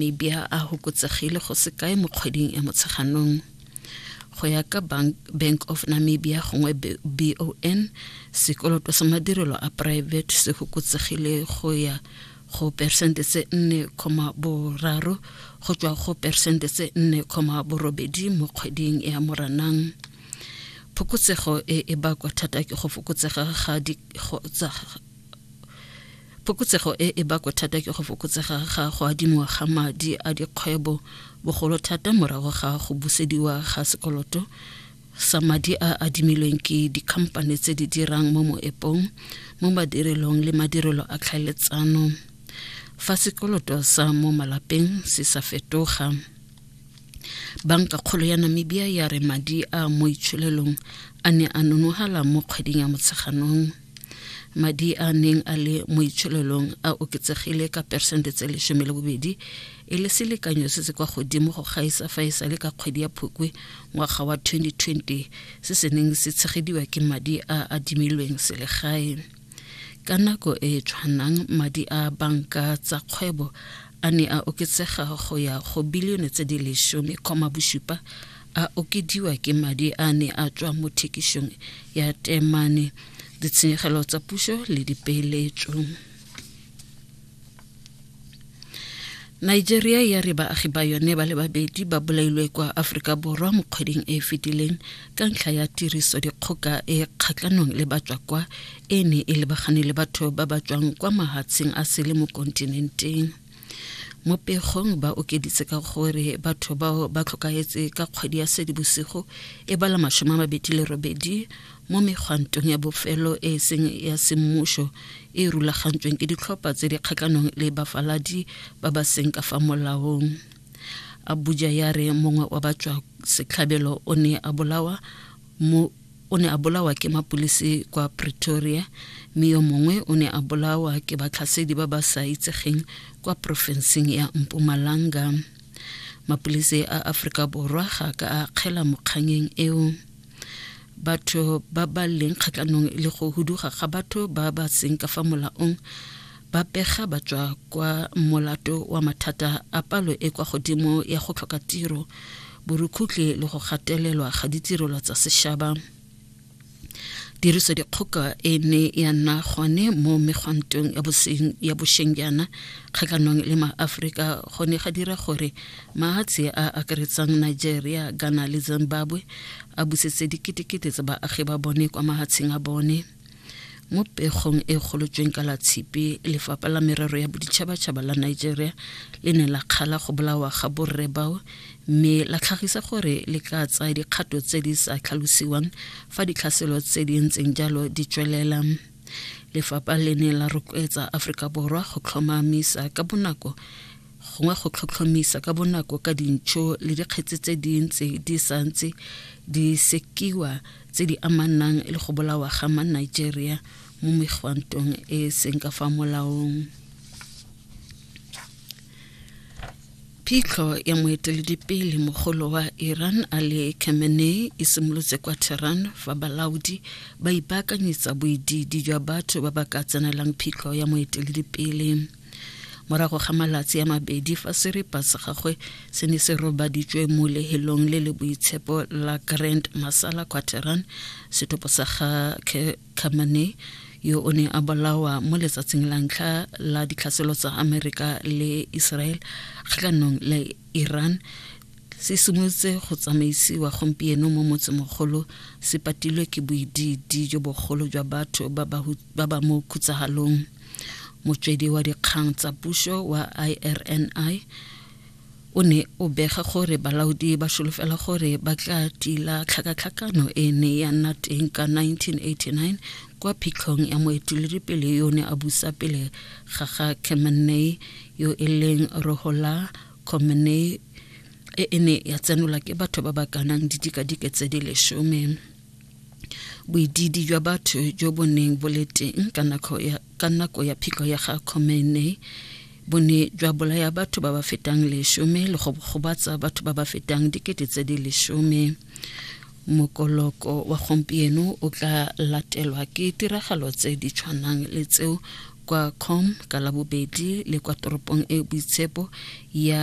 Namibia a hokotsegile go se kae mo kgweding e Motsheganong. Go ya ka Bank of Namibia gongwe BON, sekoloto sa madirelo a private se hokotsegile go ya go persente tse 4,3 go tswa go persente tse 4,8 mo kgweding ya Moranang. Phokotsego e e bakwa thata ke go fokotsega ga Fokotsego e e bakwa thata ke go fokotsega ga go adimiwa ga madi a dikgwebo, bogolo thata morago ga go busediwa ga sekoloto sa madi a adimilweng ke dikhamphane tse di dirang mo moepong, mo madirelong le madirelo a tlhaeletsano. Fa sekoloto sa mo malapeng se sa fetoga, banka kgolo ya Namibia ya re madi a mo itsholelong a ne a nonogala mo kgweding ya Motsheganong. madi a neng a le mo itsholelong a oketsegile ka peresente tse lesome le bobedi e le selekanyo se se kwa godimo go gaisa fa e sale ka kgwedi ya phukwe ngwaga wa 2020 se se neng se tshegediwa ke madi a adimilweng selegae ka nako e e tshwanang madi a banka tsa kgwebo a ne a oketsega go ya go bilione tse di lesome koma bosupa a okediwa ke madi a ne a tswa mo thekišong ya temane ditshenyegelo tsa puso le dipeeletso nigeria ya re baagi ba yone ba le babedi ba bolailwe kwa aforika borwa mo kgweding e e fetileng ka ntlha ya tiriso dikgoka e kgatlhanong le batswa kwa e ne e lebagane le batho ba ba tswang kwa mahatsheng a sele mo kontinenteng mo pegong ba okeditse ka gore batho bao ba tlhokaetse ka kgwedi ya sedibosigo e bala masome a mabedi le robedi mo megwantong ya bofelo e e seng ya semmušo e rulagantsweng ke ditlhopha tse di kgatlhanong le bafaladi ba ba seng ka fa molaong abuja ya re mongwe wa batswa setlhabelo o ne a bolawa mo o ne a bolawa ke mapulisi kwa pretoria mme yo mongwe o ne a bolawa ke batlhasedi ba ba sa itsegeng kwa porofenseng ya mpumalanga mapulisi a aforika borwa ga ka a kgela mokganyeng eo batho ba ba leng kgatlhanong le go huduga ga batho ba ba seng ka fa molaong ba pega ba tswa kwa molato wa mathata a palo e kwa godimo ya go tlhoka tiro borukhutlhe le go gatelelwa ga ditirelo tsa sešaba tiriso dikgoka e ne ya nna gone mo megwantong ya boseng ya bosheng jaana kgatlhanong le maaforika go ne ga dira gore mahatshe a akaretsang nigeria ghana le zimbabwe a busetse diketekete tsa baagi ba bone kwa mahatsheng a bone mo pegong e golotsweng ka la tshipi lefapha la merero ya boditšhabatšhaba la nigeria le ne la kgala go bolawa ga borre bao mme la tlhagisa gore le ka tsaya dikgato tse di sa tlhalosiwang fa ditlhaselo tse di ntseng jalo di tswelela lefapha le ne la rotloetsa aforika borwa go tlhomamisa ka bonako gongwe go tlhotlhomisa ka bonako ka dintšho le dikgetse tse di ntse di sa ntse di sekiwa tse di amanang le go bolawa ga ma nigeria mo megwantong e e seng ka fa molaong phitlho ya moeteledipele mogolo wa iran ali khamenei e simolotse kwa tehran fa balaodi ba ipaakanyetsa boididi jwa batho ba ba ka tsenelang phitlho ya moeteledipele morago ga malatsi a mabedi fa seripa sa gagwe se ne se robaditswe mo lehelong le le boitshepo la grand masala quateran setopo sa ga camane yo o ne a bolawa mo letsatsing la ntlha la ditlhaselo tsa amerika le israel kgatlhanong le iran se simolotse go tsamaisiwa gompieno mo motsemogolo se patilwe ke boididi jo bogolo jwa batho ba ba mo khutsagalong motswedi wa dikgang tsa puso wa irni o ne o bega gore balaodi ba solofela gore ba tla tila tlhakatlhakano e ne ya nna teng ka 1989 kwa phitlhong ya moeteledipele yo ne a busa pele ga ga khamenei yo e leng rohola khamenei e e ne ya tsenolwa ke batho ba ba kanang didikadike tse di lesome boidiidi jwa batho jo bo neng bo le teng ka nako ya, ka nako ya phitlho ya ga Khomeini bo ne jwa bolaya batho ba ba fetang lesome le go gobatsa batho ba ba fetang dikete tse di lesome mokoloko wa gompieno o tla latelwa ke tiragalo tse di tshwanang le tseo kwa com ka labobedi le kwa toropong e boitshepo ya